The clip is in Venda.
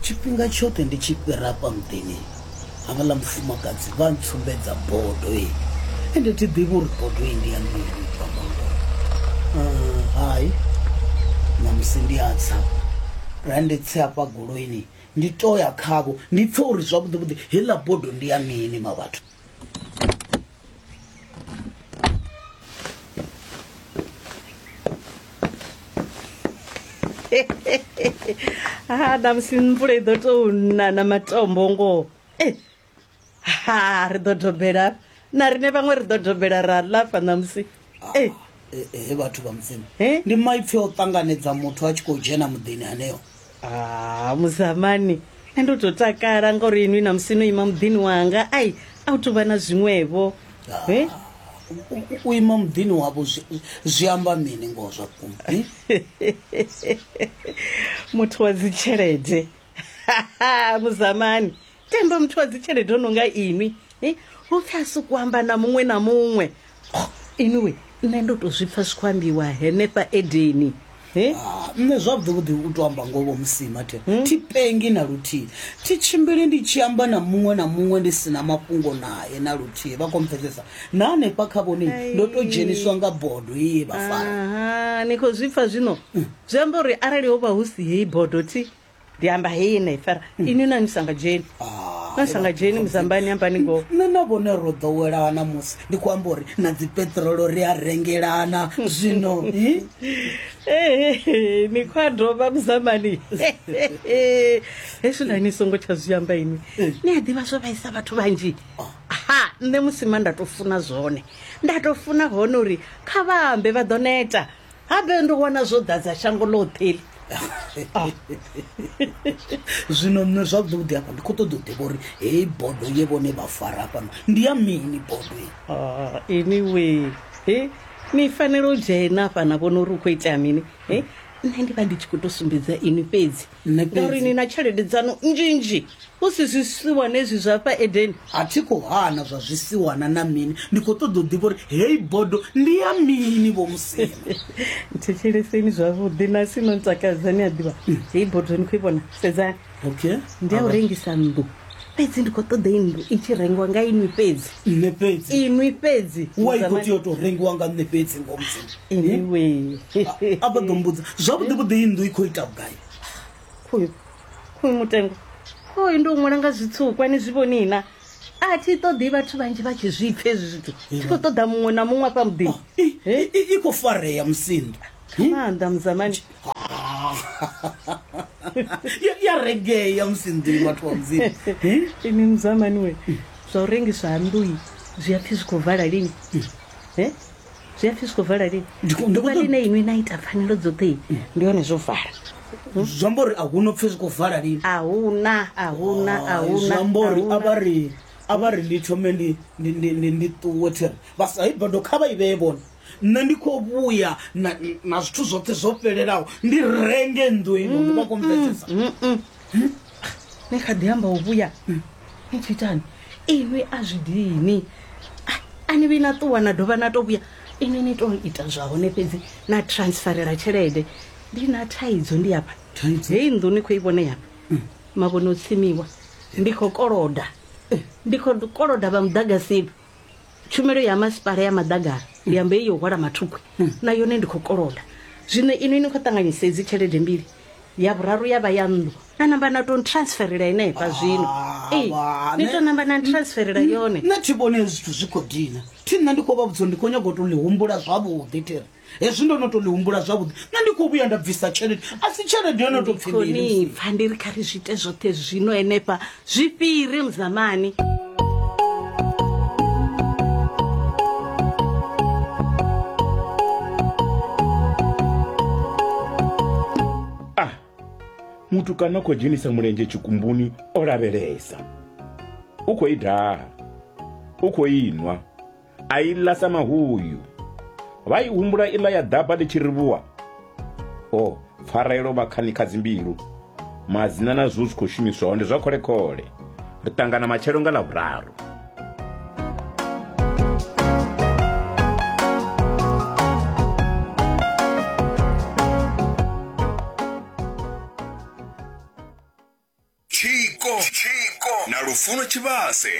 tshifhinga tshoṱhe ndi tshi fhira hafha muḓini havhaḽa mufumakadzi vha ntsumbedza bodo e ende thi ḓivhi uri bodo e ndi ya mini bva bodo hai namusi ndi a tsa ra ndi tse hafha goloini ndi to ya khavho ndi pfe uri zwavhuḓivhuḓi heiḽa bodo ndi ya mini ma vhathu ha ṋamusi mvula i ḓo tou na na matombo ngoho e ha ri ḓo dobela na rine vhaṅwe ri ḓo dobela ra lafa ṋamusi ah, eh. eh, eh, he vhathu vha mudzimu ndi maipfi o ṱanganedza muthu a tshi khou dzhena muḓini haneo ah, muzamani nṋe ndo to takala ngauri inwi na musi no ima muḓini wanga ai a u tovha na zwiṅwevho e u ima muḓini wavho zwi amba mini ngoho zwa vhukuma muthu wa dzitshelede muzamani tendo muthu wa dzitshelede o no nga inwi eh, u pfi a sokou amba na muṅwe na muṅwe Oh, inwi nṋe ndo tou zwi pfa zwi khou ambiwa henefha edeni Eh, Ah, nṋe zwavhuḓi u to amba ngoho musima the thi pengi na luthihi thi tshimbili ndi tshi amba na muṅwe na muṅwe ndi si na mafhungo naye na luthihi vha khou mpfesesa na hanefha kha vhone ndo to dzheniswa nga bodo ye vha fara aha, ni khou zwi pfa zwino zwi amba uri arali ho vha hu si heyi bodo thi ndiyamba hei nei fara hmm. ini nani sangajeni ah, na sangajeni muzambani yambani ngo nṋe na vhone ro ḓowelana musi ndi khou amba uri na dzipetrolo ri a rengelana hmm. zwino ni khou a dovha muzambani hezwi nani songo tsha zwi amba ini eh. ni a ḓivha zwo vhaisa vhathu vhanzhi oh. ha nṋe musi ma nda tou funa zwone nda tou funa hone uri kha vha ambe vha ḓo neta habe ndo wana zwo ḓadza shango ḽoṱhe eli ah. zwino nṋe zwavhuḓi hafha ndi khou ṱoḓa u ḓivha uri heyi bodo ye vhone vha fara hafhano ndi ya mini bodo ah, anyway he ni fanela u dzhena hafha na vhona uri u khou itea mini he nṋe ndi vha ndi tshi khou tou sumbedza ini fhedzi nṋe ngauri fhedzi ni na tshelede dzanu nzhinzhi hu si zwisiwana ezwi zwa fha edeni a thi khou hana zwa zwisiwana na mini ndi khou ṱoḓa u ḓivha uri heyi bodo ndi ya mini vho musina thetsheleseni zwavhuḓi na si no ntakadza ni a ḓivha heyi bodo ni khou i vhona sedzani okay ndi ya u rengisa nnḓu fhedzi ndi khou ṱoḓa i nnḓu i tshi rengiwa nga inwi fhedzi nṋe fhedzi inwi fhedzi wa i khou tea u tou rengiwa nga nṋe fhedzi ngo mudzimu anyway a vha ḓo mbudza zwavhuḓi vhuḓi i nnḓu i khou ita vhugai khoyu khoyu mutengo khoyu ndi u ṅwala nga zwitsukwa ni zwi vhoni na a thi ṱoḓi vhathu vhanzhi vha tshi zwi pfha hezwi zwithu thi khou ṱoḓa muṅwe na muṅwe afha muḓini I- i i khou farea musinda maanḓa muzamani ya reggae ya musi nḓili vhathu wa mudzimu ini muzamani we zwa u rengiswa ha nnḓui zwi a pfhi zwi khou vala lini Eh? zwi a pfhi zwi khou vala lini Ndi khou- ndi khou ḓuvha ṱoḓa- line inwi na ita pfanelo dzoṱhe ndi hone zwo vala zwi amba uri a hu no pfhi zwi khou vala lini a huna a huna a Hai, zwi huna amba uri a vha ri a vha ri lithome ndi ndi- ndi- ndi- ndi ṱuwe thiri vha sa i bodo kha vha i vhee vhone nṋe ndi khou vhuya na, na zwithu zwoṱhe zwo fhelelaho ndi renge nnḓu ino ndi vha khou mvedzesa ni kha ḓi amba u vhuya ni tshi itani inwi a zwi dini A- a ni vhi na ṱuwa na dovha na to vhuya inwi ni to ita zwa hone fhedzi na transferela tshelede ndi na thaidzo ndi afha Thaidzo? heyi nnḓu ni khou i vhone yafha mavhone o tsimiwa ndi khou koloda ndi khou koloda vha muḓagasini tshumelo ya masipala ya maḓagara ndi amba iyo hwala mathukhwi na yone ndi khou koloda zwino inwi ni khou ṱanganyisa edzi tshelede mbili ya vhuraru ya vha ya nnḓu na namba na tou transferela henefha zwino ee ni tou namba na transferela yone nṋe thi vhone zwithu zwi khou dina thi nṋe ndi khou vha vhudza ndi khou nyanga u tou ḽi humbula zwavhuḓi thiri hezwi ndo no to ḽi humbula zwavhuḓi nṋe ndi khou vhuya nda bvisa tshelede a si tshelede yo no to pfhi mini khoni pfa ndi ri kha ri zwi ite zwoṱhe zwino henefha zwi fhiri muzamani ah muthu kana khou dzhenisa mulenzhe tshikumbuni o lavhelesa u khou i daha u khou inwa a i ḽa sa mahuyu vha i humbula iḽa ya ḓaba ḽi tshi rivhuwa o pfarelo vha khani kha dzimbilu madzina na zwo zwi khou shumiswaho ndi zwa kholekhole ri ṱangana matshelo nga ḽavhuraru tshiko na lufuno tshivhase